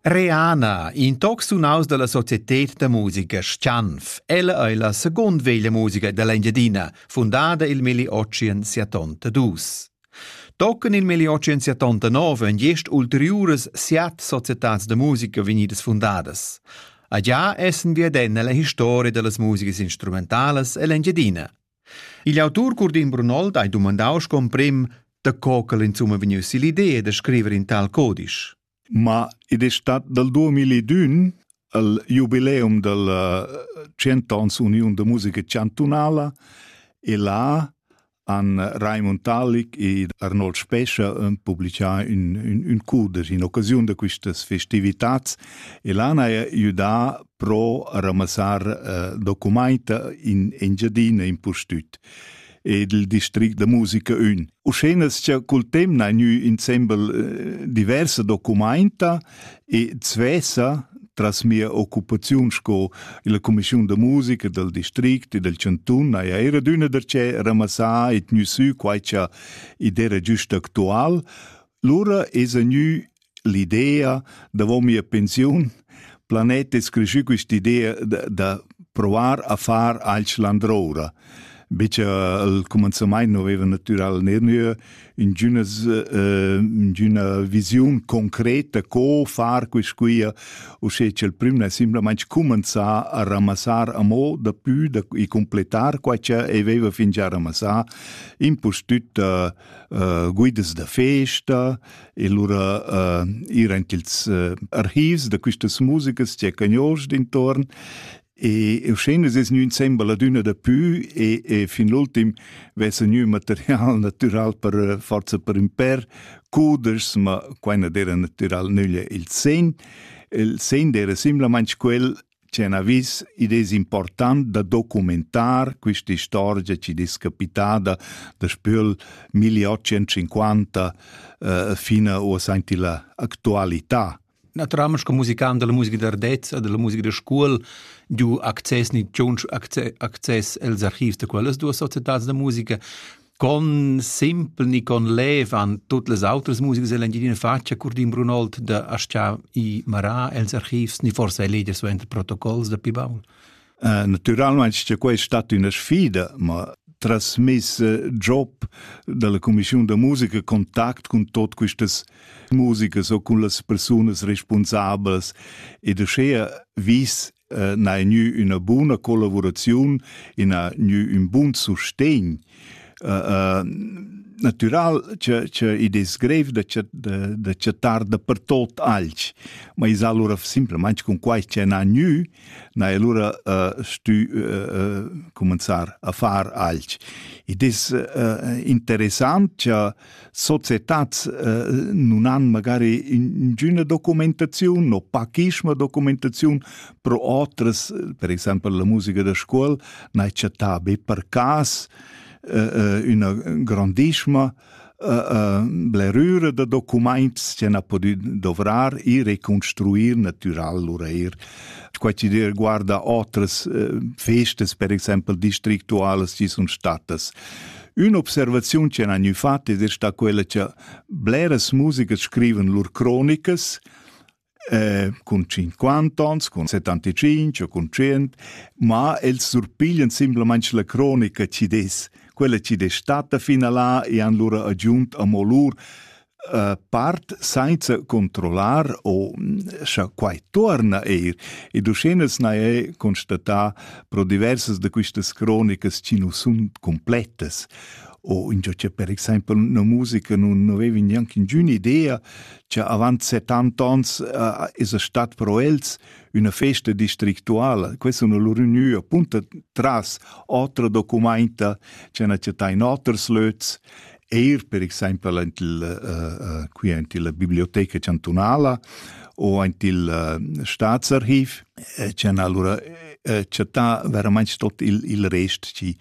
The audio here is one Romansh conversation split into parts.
Reana, in toc sunaus dalla societed da musica Schanf. Ella ei la second veglia musica dall'Engiadina, fundada il milli otschien siatonta dus. Tochen il milli otschien siatonta nov ein gest ulteriuras siat societads da musica vegnidas fundadas. A già essen wir denn nella historia dallas musica instrumentalas ell'Engiadina. Igl autur Curdin Brunold ha dumandau sco emprim da co ch'el insumma vegniu sill'idea da scriver in tal codisch. Ma id è stat dal 2001 al jubileum dal eh, cent'ans Uniun da musica chantunala e là han Raimund Talik e Arnold Spescha eh, publicà un, un, un cudesch in occasiun da questas festivitats e là han judà pro ramassar uh, documaita in Engiadina impustüt ed il district da musica ün. Uschenas cha cul temp na gnü insembel uh, diversa documenta e zwesa tras mia occupaziun sco la commissiun da musica dal district e dal cantun haja era d'üna da che ramassà e tgnü sü quai cha id era giust actual, lura esa gnü l'idea davon mia pensiun planet es creschü quist'idea da, da provar a far alch landroura. Bice al comenzamaint non aveva natural nernue ingünas, uh, ingüna visiun concreta co far quist quia, usché ch'el prüm n'ha simplamaing comenzà a ramassar amo da pü da, e completar quai cha aveva fingià ramassà, impustüt uh, uh, guidas da festa, e lura uh, ir anche ils uh, archivs da quistas musikas c'è cagnols d'intorn e eu schene es gnü insembel ad üna da pü e, e fin l'ultim vessa gnü material natüral per eh, forza per ün per cuders, ma quai na d'era natüral nüglia il sen. Il sen d'era simplamaing quel C'è un avis, id es important da documentar quista istorgia chi es capitada daspö 1850 eh, fin a aint illa actualità. Na tramas co musicant della musica d'ardezza, della musica da scuol, giu access ni tschunch access els archivs da quellas duas societats da musica, con simpel ni con lev han tut las outras musigas dell Engiadina fatg Curdin Brunold da aschia i marà els archivs ni forsa ei leger suenter protocols da pli baul? Uh, naturalmein che quei è stato una sfida, ma trasmess eh, job dalla Commissione da musica contact con tot quistas musikas o con las persunas responsablas e da schea vis n'hai gnü üna buna collavuraziun e n'ha gnü ün bun sustegn. Natüral cha cha id es grev da chat da da chattar dapertot alch, ma es alura simplamaing cun quai cha n'ha gnü, n'hai alura stü cumanzar a far alch. Id es interessant cha societads eh, nun han magari ingüna documentaziun o pachisma documentaziun pro otras, per exempel la musica da scuol, n'hai chattà be per cas eh, eh, üna grandissima blerüra da documaints che na podi dovrar e reconstruir natural lur eir. Qua ci dir guarda otras festas, per exempel districtualas, ci sun statas Ün'observaziun ch'han gnü fat es sta quella cha bleras musichers scrivan lur cronicas eh, cun 50 ans, cun 75 o cun 100, ma els surpiglian simplamaing la cronica chi'd es quella chi'd es statta fin a là e han lura agiunt amo lur part sainza controllar o scha quai tuorna eir ed uschenels n'ha e constatà pro diversas da quistas cronicas chi nu sun completas o ingio cha per exaimpel üna musica nun aveva gnanc ingün idea cha avant 70 ans uh, esa stat pro els üna festa districtuala. Questa sun lur ünü appunta tras otra documainta cha n'ha chattà in oters löts eir per exaimpel aint il uh, qui aint illa biblioteca chantunala o aint il uh, staatsarchiv eh, ci han allura eh, chattà veramente tot il, il rest ci,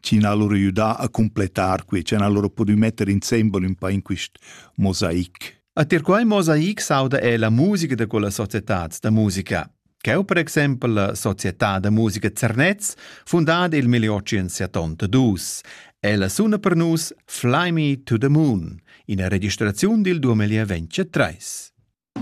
ci han allora aiutà a completar qui, ci han allora pudü metter insembel un pa in quist mosaic. A tir quai mosaic sauda è la musica da quella società da musica. Cheu per exempel la società da musica Zernez, fundada il 1872. Ella suna per nus Fly Me to the Moon, ina registraziun dil 2023.